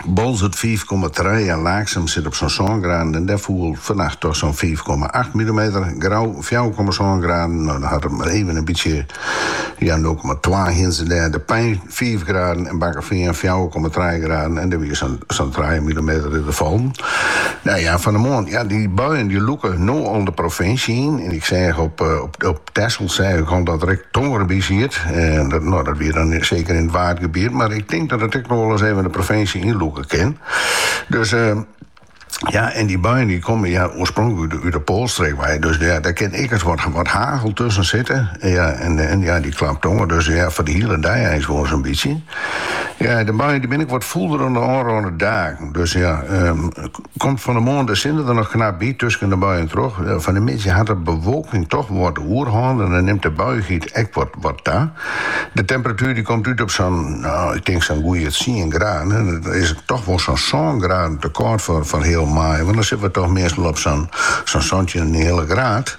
Boalsert fiif komma trije en Laaksum sit op sa'n sân graden en dêr foel fannacht dochs sa'n fiif komma acht millimeter. Grou fjouwer komma sân graden, no dan hat it mar even in bytsje, ja nul komma twa hienen se dêr. De Pein fiif graden en Bakkefean fjouwer komma trije graden en dêr wie sa'n trije millimeter fallen. Nou ja, fan 'e moarn, ja dy buien dy lûke no al de provinsje yn en ik seach op Tessel seach ik al dat der ek tonger by siet. En dat, no, dat wie dan seker yn it Waadgebiet. Mar ik tink dat it ek noch wol ris even de provinsje ynlûke kin. Dus eh, ja, en dy buien dy komme ja, oarspronklik út de poalstreek wei. Dus ja, dêr kin ek ris wat, wat hagel tusken sitte. Ja, en, en ja, dy klap tonger. Dus ja, foar de hiele dei is wol sa'n bytsje. Ja, de buien dy binne ek wat fûler dan de ôfrûne dagen. Dus ja, um, Komt fan 'e moarn de sinne der noch knap by tusken de buien troch. Fan de middei hat de bewolking toch wat de oerhân en dan nimt de buiichheid ek wat ta. De temperatuer dy komt út op sa'n, nou, ik tink sa'n goeie tsien graden. En dat is toch wol sa'n sân graden te kâld foar foar heal maaie, want dan sitte we toch meastal op sa'n santjinenheale graad.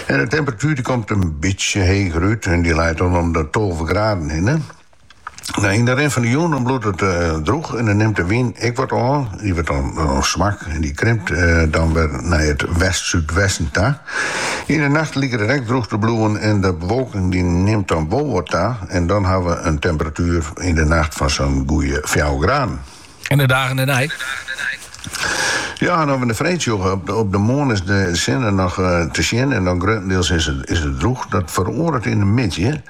En de temperatuer dy komt in bytsje heger út en dy leit dan om de tolve graden hinne. Nou, yn de rin fan de jûn dan bliuwt it drûch en dan nimt de wyn ek wat ôf. Dy wurdt dan swak en dy krimpt dan wer nei it west-súdwesten ta. Yn de nacht liket it ek drûch te bliuwen en de bewolking dy nimt dan wol wat ta en dan hawwe we in temperatuer yn de nacht fan sa'n goeie fjouwer graden. En de dagen dêrnei? Ja, en as we de freed sjogge, op de moarn is de sinne noch eh, te sjen en dan gruttendeels is het, is het droeg. Dat feroaret in de middei.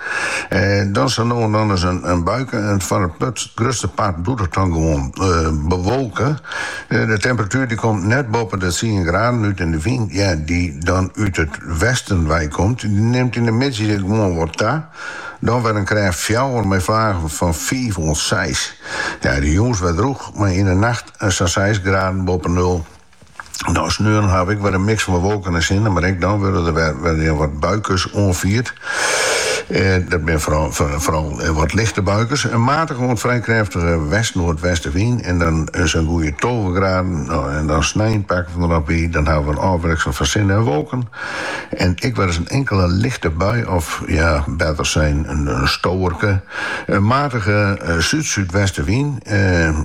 Eh, dan zo no en dan eens een, een buike en voor het put, grutste part doet het dan gewoon eh, bewolken. Eh, de temperatuur die komt net boven de 10 graden uit en de wind ja, die dan uit het westen wij komt, die neemt in de middei gewoon wat ta. Dan wurdt in krêft fjouwer mei flagen fan fiif oant seis. De jûns wer drûch, mei yn 'e nacht sa'n seis graden boppe nul. Dan sneon ha we ek wer in miks fan wolken en sinne, mar ek dan wurde der wer wat buikes oanfierd. Dat binne foaral wat lichte buikes. In matige oant frij krêftige west-noardwestewyn en dan sa'n goeie tolve graden. Dan snein pakke we der noch by, dan hawwe we in ôfwikseling fan sinne en wolken. En ek wer ris in inkele lichte bui of ja, better sein in stowerke. In matige súd-súdwestewyn,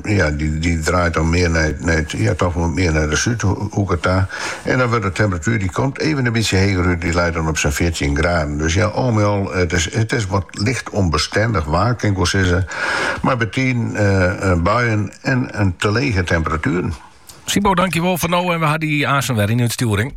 ja, dy draait dan mear nei it, nei it, ja, toch wol mear nei de súdhoeke ta. En dan wurdt de temperatuer, dy komt even in bytsje heger út, dy leit dan op sa'n fjirtjin graden. Dus ja, al mei al, it is, it is wat licht ûnbestindich waar, kin ik wol sizze, mei betiden buien en te lege temperatueren. Sybo, dankjewol foar no en we ha dy aansen wer yn 'e útstjoering.